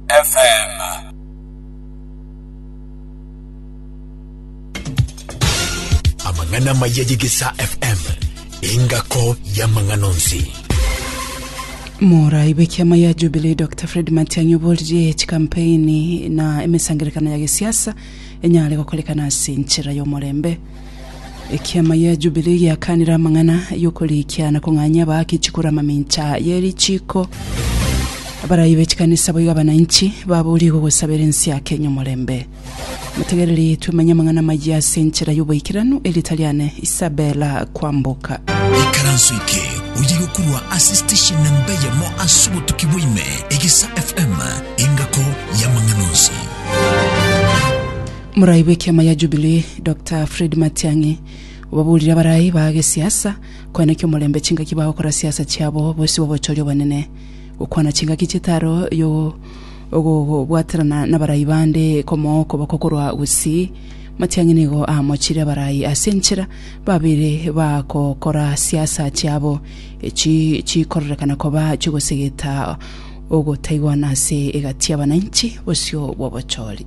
FM. amang'ana maya yegesa fm engako y'amang'ana onsi Mora ibeki ama ya Jubilee Dr. Fred Matiang'i oborie chikampeni na emesangerekano ya gesiasa enyare gokorekana ase enchera y'omorembe Ekiama gia Jubilii giakanire amang'ana y'okorikia na kong'anyia abaake chikura mamincha ye richiiko. Abarai be chikanisa boigo abananchi baboorigwe gosabera ense ya Kenya omorembe. Motegereri twemenye amang'ana amayia ase enchera y'oboikeranu, erieta riane Isabella Kwamboka. Ikaranso eke oyegokorwa ase station na mbe yamo ase obotuki bwa ime, Egesa FM, engako y'amang'ana onsi. Morai bw'ekiama ya Jubilee Doctor Fred Matiang'i obaburire abarai ba gesiasa koenekia omorembe chingaki bagokora siasa chiabo bosio bw'obochori obonene, gokwana chingaki chitaro yo ogobwaterana nabarai bande komooko bakokorwa gusii. Matiang'i nigo aamochire abarai ase enchera babere bagokora siasa chiabo echi chikororekana koba chigosegeta ogotaigwana ase egati y'abananchi bosio bw'obochori.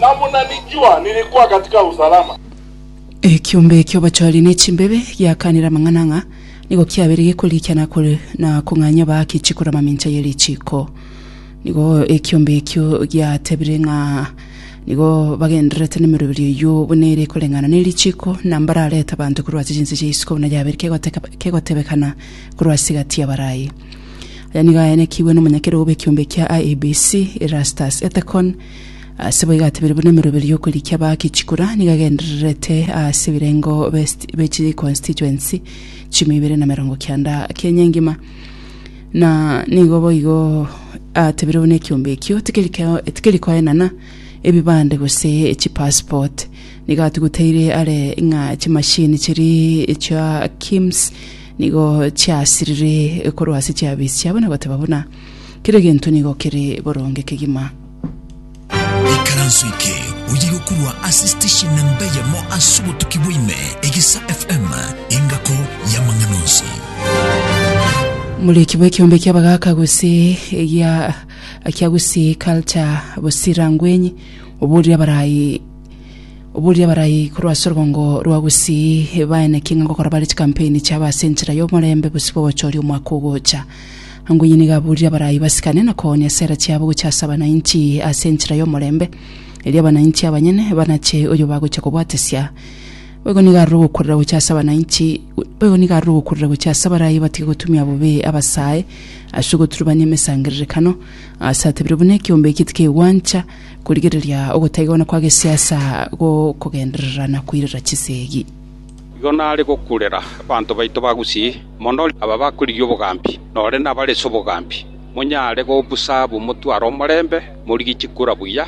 Na buna nijua nilikuwa katika usalama. Ekiombe eki'obochori ne chimbebe giakanire amang'ana ng'a nigo kiabeire gekorikia na kore na kong'anya baake chikura mamincha ye richiiko. Nigo ekiombe ekio giatebire ng'a nigo bagendererete n'emeroberio eyio buna ere ekoreng'ana ne richiiko, na mbararete abanto korwa ase chinse chia isiko buna yabeire kegoteka- kegotebekana korwa ase egati y'abarai. Aya nigo ayanekigwe n'omonyakere obe ekiombe kia IEBC, Erastus Ethekon, Ase boigo atebire buna emeroberi y'okorikia bake chikura nigo agendererete ase ebirengo b'est- be chi constituency chimia ibere na merongo kianda Kenya engima na nigo boigo atebire buna ekiombe ekio tikeri keo- tikeri koenana ebibande gose chi passport nigo atuguteire are ng'a chimashini chiria echia KIMS nigo chiasirire korwa ase chiabichi chiabo na goteba buna Kera egento nigo kere boronge kegima. Ikaranso eke oye gokorwa ase station na mbe yamo ase obotuki bwa ime, Egisa FM, engako y'amang'ana onsi. Muriki bw'ekiombe kia Bagaka Gusii egia kia Gusii Culture Busira Ngwenyi oborire abarayi oborire abarayi korwa ase orobongo rwa Gusii baeneke ng'a gokora bare chikampeni chiabo ase enchera y'omorembe bosio bogochoria omwaka ogocha. Ango inye nigo aburire abarai basikane na koonia esera chiabo gochia ase abanainchi ase enchera y'omorembe, erio abanainchi abanyene banache oyo bagochia kobwatesia. Boigo nigo aroro ogokurera gochia ase abanainchi, boigo nigo aroro ogokurera gochia ase abarai batige gotumia bobe abasae ase ogoturubania emesangererekano, aase atebire buna ekeombe eki tikegwancha korigereria ogotaigana kwa gesiasa gokogenderera na koirera chisegi. Igo nare gokurera abanto baito ba Gusii. mono aba bakorigia obogambi, nore nabarese obogambi, monyare gobusa ab'omotwaro omorembe, morigie chikura buya,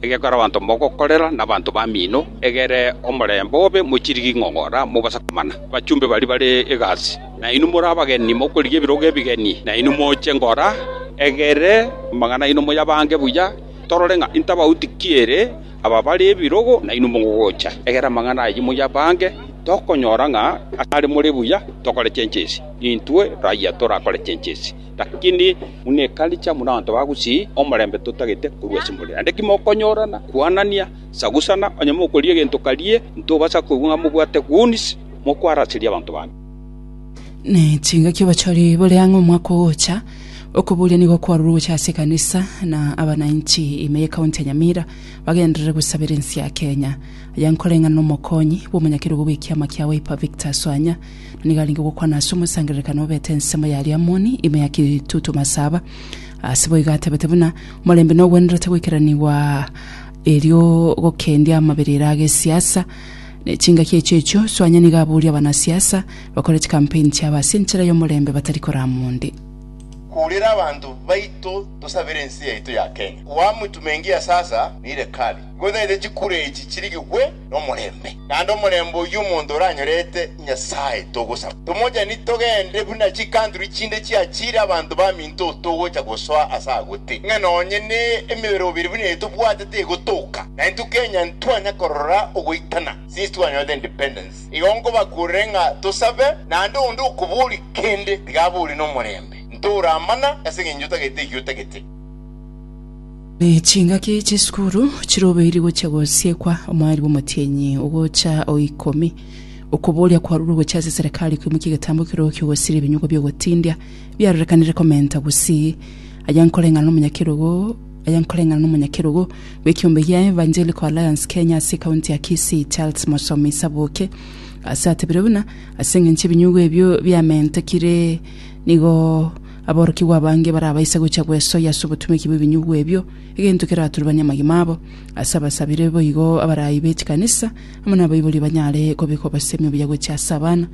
egekore abanto mogokorera nabanto bamino, egere omorembe obe, mochirigie ing'ong'ora, mobase komana abachumbe baria bare egasi. Nainwe more abageni, mokorigia ebirogo ebigeni, nainwe moche ngora, egere amang'ana aino moyabange buya, torore ng'a intabauti ki ere Aba bare ebirogo, nainwe mogocha egera amang'ana ayio moyabange. Tokonyora ng'a asare more buya tokore chenchesi, intwe raia torakore chenchesi, lakini buna ekaricha buna abanto ba Gusii, omorembe totagete korwa ase more. Naende ki mokonyorana, kwanania, sagusana, onye mokoria egento karie, ntobasa koigwa ng'a mobwate goons mokoaraseria abanto bande. Nechingaki obachori bore ang'e omwaka ogocha, okoburia nigo kwarure gocha ase ekanisa na abananchi ime ye county ya Nyamira bagenderere gosabera ense ya Kenya. Aya nkoreng'ana nomokonyi bw'omonyakerogo bw'ekiama kia Wiper Victor Swanya na nigo arenge gokwana ase omosangererekano obete ensemo ya Liamoni ime ya Kitutu Masaba. Ase boigo atebete buna omorembe nogwenerete goikeranigwa erio gokendia amaberero agesiasa Ne chingaki echio echio Soanya nigo abooria abanasiasa bakore chikampeni chiabo ase enchera y'omorembe batari korama onde. Kourera abanto baito tosabere ense yaito ya Kenya koamwe tumengie ase asa neire kare nigo taete chikura echi chirigigwe nomorembe naende omorembe oyio omonto oranyorete nyasaye togosaba tomochani togende buna chikantri chinde chiachire abanto bamino Naintwe togocha gosoa ase agwo te, ng'a nonye ne emebere obere buna eye tobwatete egotoka, naintwe Kenya ntitwanya korora ogoitana since twanyorete independence. Igo nkobakurere ng'a tosabe, naende onde okoboria kende tiga aborie nomorembe, ntoramana ase eng'encho otagete eki otagete. Chingaki chisukuru chirobeiri gochia gosiekwa omwarimu omotienyi ogocha o ikomi. Okoboria kwarurwe gochia ase serekari koimokia egetambo ekerokio gosiria ebinyugo biogotindia. biarorekanire komenta gusii, aya nkoreng'ana nomonyakerogo aya nkoreng'ana nomonyakerogo bw'ekiombe gia Evangelical Alliance Kenya ase ekaunti ya Kisii Charles Mosomi Isaboke ase atebire buna ase eng'encho ebinyugu ebio biamentekire nigo aborokigwa abange barabaise gocha gwesoyia ase obotumeki bw'ebinyugu ebio egento keraturubanie amagima abo ase abasabire boigo abaraai be chikanisa amo nabaibori banyare kobeka obosemi obuya gochia ase abana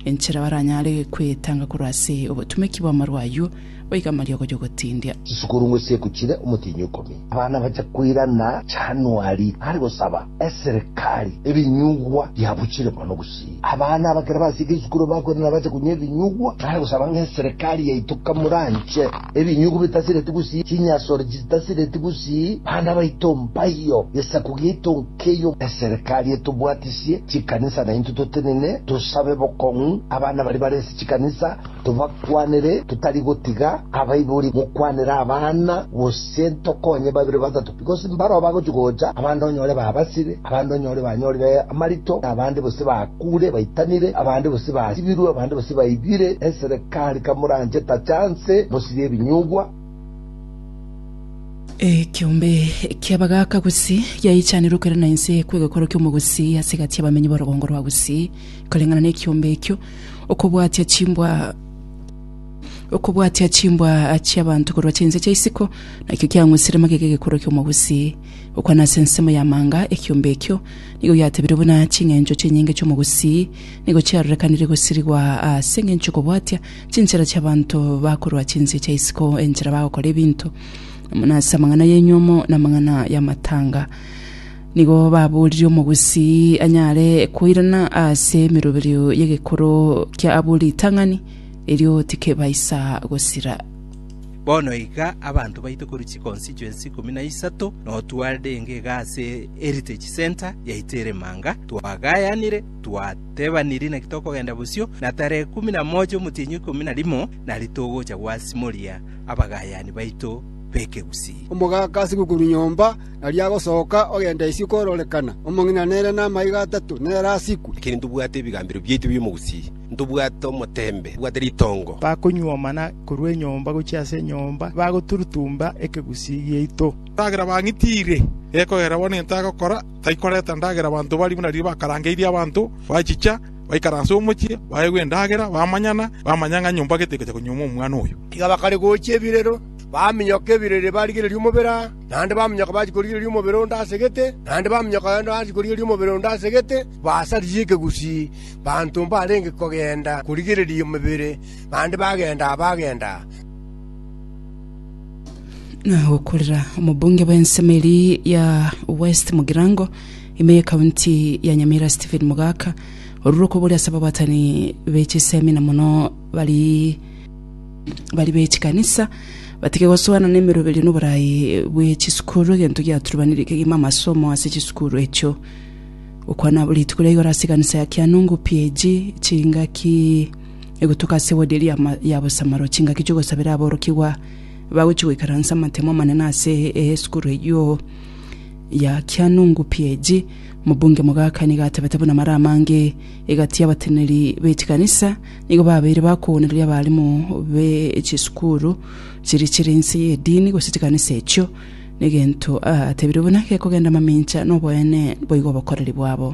enchera baranyare kwetanga korwa ase obotumeki bw'amaru ayio, baige amariogo y'ogotindia. Chisukuru ng'wesieku chire omotienyi ikomi. Abana bacha koirana Januari are gosaba eserekari ebinyugwa biabuchire mono gusii. Abana aba kera basieke isukuru bakoirana bache kunywa ebinyugwa are gosaba ng'a eserekari yaito kamuranche ebinyugwa bitasireti gusii, chinyasore chitasireti gusii, bana baito mpaiyo, gesaku giaito. Keyio eserekari etobwatisie chikanisa naintwe totenene, tosabe bokong'u abana baria bare ase chikanisa, tobakwanere totari gotiga abaibori gokwanera abana, gose ntokonye babere batato, because mbarao bagochia gocha, abande onyore babasire, abande onyore banyorire amarito, na abande gose bakuure baitanire, abande gose basibirwe, abande gose baibire. Eserekari kamoranche tacha nse, mosirie ebinyugwa. ekiombe ki'abagaaka Gusii giaichanirwe kwera na inse kw'egekoro ki'omogusii ase egati y'abamenyi b'orogongo rwa Gusii. Koreng'ana n'ekiombe ekio, okobwatia chimbwa okobwatia chimbwa chi'abanto korwa chinse chia isiko nakio kiang'usire magega 'egekoro ki'omogusii. Gokwana ase ensemo y'amanga, ekiombe ekio nigo giatebirwe buna ching'encho chinyinge chi'omogusii nigo chiarorekanire gosirigwa ase engencho y'okobwatia Chinchera chi'abanto bakorwa chinse chia isiko, enchera bagokora ebinto, buna ase amang'ana y'enyomo na amang'ana y'amatanga. Nigo baboririe omogusii anyare koirana ase emeroberio y'egekoro kia abwo ritang'ani, erio tikebaisa gosira. Bono iga abanto baito korwa chikonsicho ense ikomi na isato notwarire enga iga ase Heritage Centre yaito ere Manga, twagayanire, twa. Teba niri naki tokogenda bosio, na tarehe ikomi na mocha y'omotienyi oikomi na rimo nari togocha gwasimoria abagaayani baito b'ekegusii. Omogaka ase gokuru nyomba, na riagosoka ogenda isiko ororekana, omong'ina nere namaiga atato nere asiku. Lakini ntobwate ebigambero biaito bi'omogusii, ntobwate omoteembe, ntobwate ritongo. Bakonyuomana korwa enyomba gochia ase enyomba, bagoturutumba ekegusii giaito. Ekiagera bang'itiire, gekogera bono gento agokora. tari koreta endagera abanto baria buna riria bakarangeirie abanto, bachicha, baikaransa omochie, baegwa endagera, bamanyana, bamanya ng'a nyomba gete egocha konyuoma omwana oyo. Tiga bakare gochia ebirero, baminyoka ebirero ere barigereria omobere aa, naende baminyoka bachia korigereria omobere onde ase gete, naende baminyoka naende bachia korigereria omobere onde ase gete, basaririe ekegusii banto mbarenge kogenda korigereria emebere, naende bagenda aa, bagenda aa. gokorera omobunge bw'ensemo eria ya West Mugirango ime y'ekaunti ya Nyamira Stephen Mogaka orure okoboria ase ababatani b'echisemi na mono bari bari b'echikanisa batige gosoana n'emeroberio na oboraai bwe chisukuru egento giaturubanire kegima amasomo ase chisukuru echio gokwana rituko ria igoro ase ekanisa ya Kianungu PAG chingaki egotoka ase wodi eria ya bosamaro, chingaki chi'ogosabera aborokigwa bagochia goikaransa amatemo amanene ase esukuru eyio ya Kyanungu PAG. Mobunge Mogaka nigo atebete buna mara amange egati y'abateneneri be chikanisa nigo babeire bakoonereria abarimu be chisukuru chiria chire inse y'edini gose chikanisa echio negento atebire buna gekogenda mamincha noboene boigo obokoreri bwabo.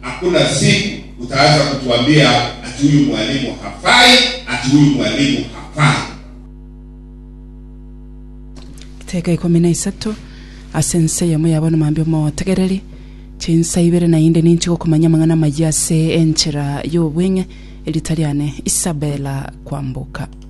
Hakuna siku utaweza kutuambia ati huyu mwalimu hafai, ati huyu mwalimu hafai. Riteka ikomi na isato, Ase ense eyemo ya bono mambia omotegereri, chinsa ibere naende ninche gokomanya amang'ana amayia ase enchera y'obweng'e, erita riane Isabella Kwamboka.